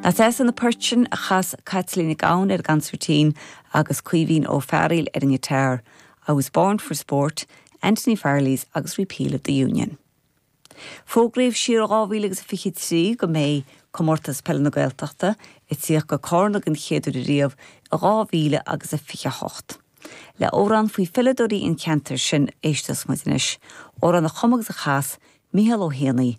Nach deas iad na poirt sin a chas Caitlín Nic Gabhann ar an gconsairtín agus Caoimhín Ó Fearghail ar an ngiotár, I was born for sport, Anthony Farley's agus Repeal of the Union. Fógraíodh siar i 2023 go mbeidh Comórtas Peile na Gaeltachta ag tíocht go Carna don chéad uair ariamh i 2028. Le amhrán faoi pheileadóirí an cheantair sin a éistfeas muid anois, amhrán a chum agus a chas Micheál Ó hÉanaí,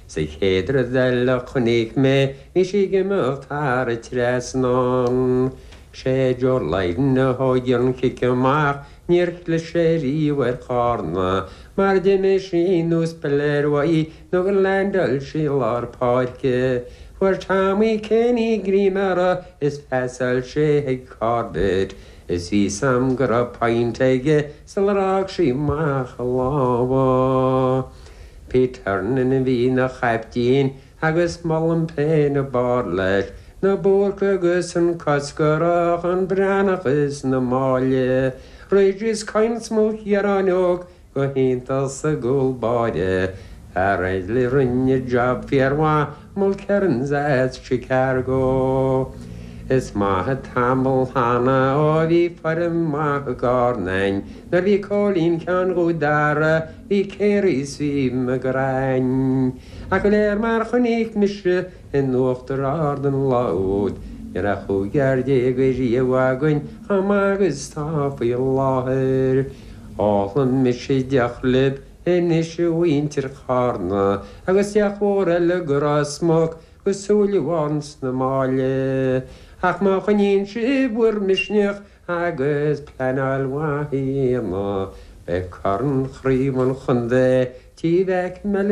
Is an chéad rud eile a chonaic mé is í ag imeacht thar an trasnán. Sé Joe Lydon a thóg an cic amach, níor chlis sé riamh ar Chárna mar d'imigh sí ar nós piléir uaidh nó gur landáil sí i lár páirce. Fuair Tommy Kenny greim uirthi is phasáil sé chuig Corbett is bhí a fhios a'm go raibh pointe aige sular fhág sí amach a lámha. Peter Nan a bhí ina chaiptín agus molaim féin an barr leis na Búrca agus an Cosgarach, an Breathnach is na Máille, Ridge is King is Maoilchiaráin óg go hiontach sa gcúl báire, Farrell a rinne job fíor mhaith Mulkerrins as Chicago. Is maith tamall cheana ó bhí foireann mhaith i gCarna againn, nuair bhí Cóilín Sheáin Dhuibh, Dara, bhí Carey 's bhí McGrane. Ach go léir mar chonaic mise in Uachtar Ard an lá úd, ní raibh cúigear déag ariamh againn chomh maith agus atá faoi láthair. Ólfaidh mise deoch libh. Anois a mhuintir Charna agus deoch mhór eile do Ridge is Mac agus Súilleabháin is na Máille, ach má choinníonn sibh bhur misneach agus pleanáil mhaith a dhéanamh, beidh corn Chraobh an Chontae Tigh Mheaic